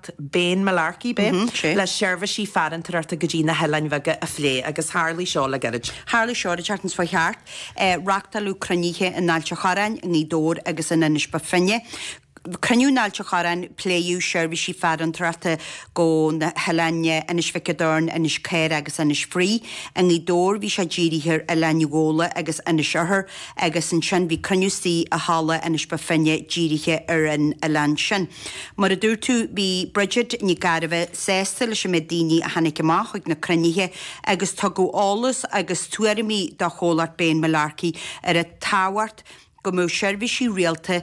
teacht Bane Mullarkey, b'é? sé. le seirbhísí farantóireachta go dtí na hoileáin bheaga a phlé agus tharlaigh seo le gairid. Tharlaigh seo an tseachtain seo a chuaigh thart. Reachtáileadh cruinnithe in Ailt a' Chorráin, i nGaoth Dobhair agus in Inis Bó Finne. Cruinniú in Ailt a' Chorráin, pléadh seirbhísí farantóireachta go na hoileáin Inis Mhic an Doirn, Inis Caorach agus Inis Fraoigh. I nGaoth Dobhair bhí sé dírithe ar Oileán Ghabhla agus Inis Oirthir agus ansin bhí cruinniú istigh i Halla Inis Bó Finne dírithe ar an oileán sin. Mar a dúirt tú, bhí Bridget Nic Gairbheith sásta leis an méid daoine a tháinig amach chuig na cruinnithe agus tugadh eolas agus tuairimí do Chomhlacht Bane Mullarkey ar an tábhacht go mbeadh seirbhísí rialta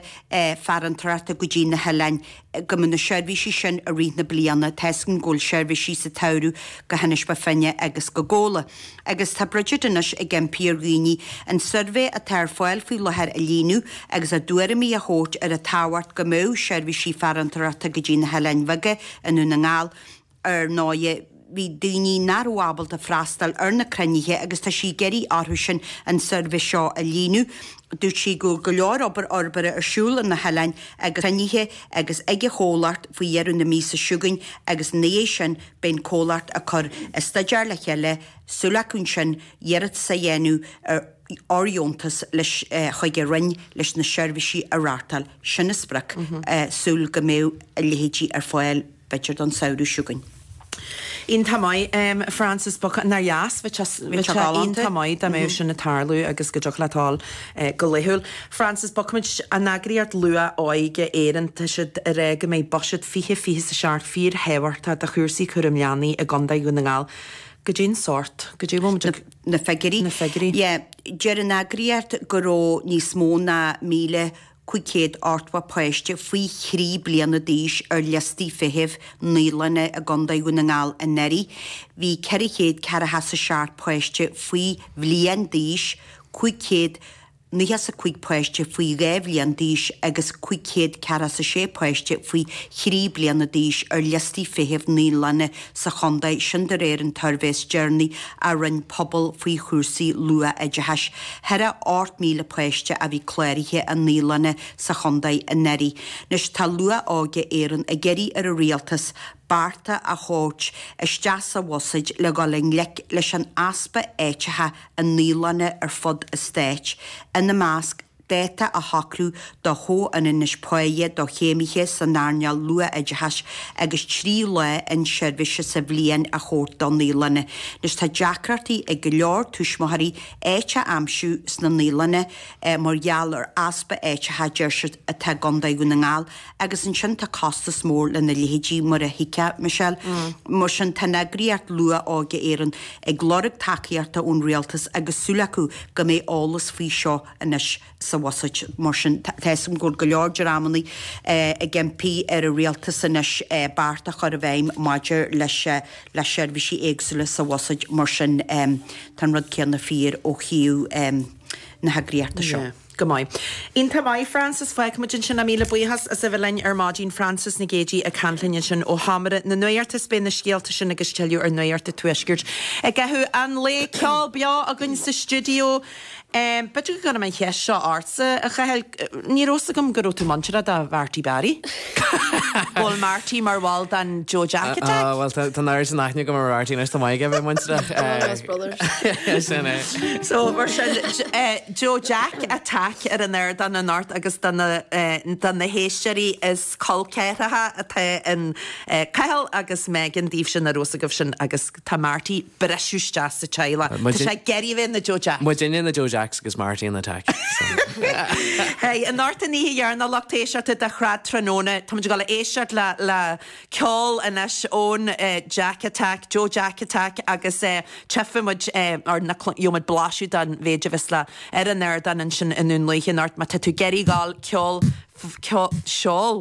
farantóireachta go dtí na hoileáin, go mbeadh na seirbhísí sin i rith na bliana tá a fhios againn go bhfuil seirbhísí sa tsamhradh go hInis Bó Finne agus go Gabhla. agus tá Bridget anois ag impí ar dhaoine an suirbhé atá ar fáil faoi láthair a líonadh agus a dtuairimí a thabhairt ar an tábhacht go mbeadh seirbhísí farantóireachta go dtí na hOileáin Bheaga i nDún na nGall. Ar ndóigh, bhí daoine nach raibh ábalta freastal ar na cruinnithe agus tá sí ag iarraidh orthusan an suirbhé seo a líonadh. Dúirt sí go bhfuil go leor obair fhorbartha ar siúl ar na hoileáin agus cruinnithe agus ag an chomhlacht faoi dheireadh na míosa chugainn agus ina dhiaidh sin, Beidh an comhlacht ag cur an staidéar le chéile, súil acu ansin iarratas a dhéanamh ar fhóirdheontas leis chuig an Roinn leis na seirbhísí a reáchtáil. Sin an sprioc, súil go mbeidh a leithéidí ar fáil b'fheidir don samhradh chugainn. Iontach maith, Frances Buchan, nár dheas? Bheadh sé iontach maith dá mbeadh sin ag tarlú agus go dtiocfadh leat a dhul go laethúil. Frances, bogfaidh muid, an eagraíocht luath-óige Éireann, tá siad ag rá go mbeidh buiséad fiche fiche is a seacht fíorthábhachtach do chúrsaí cúram leanaí i gContae Dhún na nGall. Cad é an sórt. Cad é a bhfuil muid ag. na figiúirí. na figiúirí. Yeah. Deir an eagraíocht go raibh níos mó ná míle cúig chéad ochtó páiste faoi thrí bliana d'aois ar liostaí feithimh naíolanna i gContae Dhún na nGall anuraidh. Bhí ceithre chéad ceathracha is a seacht páiste faoi bhliain d'aois, cúig chéad. nócha is a cúig páiste faoi dhá bhliain d'aois agus cúig chéad ceathracha is a sé páiste faoi thrí bliana d'aois ar liostaí feithimh naíolanna sa chontae, sin de réir an tsuirbhé is deireanaí a rinne Pobal faoi chúrsaí luath-oideachais. Chóir a bheith 8,000 páiste a bhí cláraithe i naíolanna sa chontae anuraidh. Anois tá Luath-Óige Éireann ag iarraidh ar an Rialtas bearta a thabhairt isteach sa Bhuiséid le dhul i ngleic leis an easpa áiteacha i naíolanna ar fud an stáit, ina measc, dáta a shocrú do chomhionannas páighe do chéimithe san earnáil luathoideachais agus trí lá inseirbhíse sa bhliain a thabhairt do naíolanna, anois tá deacrachtaí ag go leor tuismitheoirí áit a aimsiú sna naíolanna mar gheall ar easpa áiteacha, deir siad, atá i gContae Dhún na nGall. agus ansin tá costas mór lena leithéidí, mar a thuigfeadh Michelle. Mar sin, tá an eagraíocht Luath-Óige Éireann ag lorg tacaíochta ón rialtas agus súil acu go mbeidh eolas faoi seo anois sa bhuiséad. Mar sin, tá a fhios agam go bhfuil go leor dreamanna ag impí ar an rialtas anois beart a chur i bhfeidhm maidir le seirbhísí éagsúla sa bhuiséad. Mar sin, tá an rud céanna fíor ó thaobh na heagraíochta seo. Go maith. Iontach maith, Frances. Feicfimid ansin é. Míle buíochas as a bheith linn ar maidin. Frances Nic Géadaigh ag caint linn ansin ó Sheomra na Nuachta is beidh na scéalta sin agus tuilleadh ar Nuacht an Tuaiscirt i gcaitheamh an lae. Ceol beo againn sa stiúideo. B'fhéidir go gcuirfinn an cheist seo ortsa, a Chathail, ní raibh a fhios agam go raibh tú muinteartha do Mharty Barry? Bhfuil Marty mar bhall den Joe Jack Attack? Bhuel, tá an oiread sin aithne agam ar Mharty anois, tá muid chóir a bheith muinteartha. Bhuel, Brothers. Sin é. So, mar sin. Joe Jack Attack ar an ardán anocht agus do na héisteoirí is col ceathracha atá in Cathal agus Megan daoibhse nach raibh a fhios agaibh sin agus tá Marty ag briseadh isteach sa teaghlach. Tá sé ag iarraidh bheith ina Joe Jack. Muidinne na Joe Jacks agus Marty an attack. Hey, anocht an oíche dheireanach lucht éisteachta de Thrad Tráthnóna, táimid ag dul a éisteacht le. ceol anois ón Jack Attack, Joe Jack Attack agus tiocfaidh muid ar na, gheobhaidh muid blaiseadh den mhéid a bheas le, ar an ardán ansin i nDún Lúiche anocht, Má tá tú ag iarraidh ceol, ceol, ceol, seol.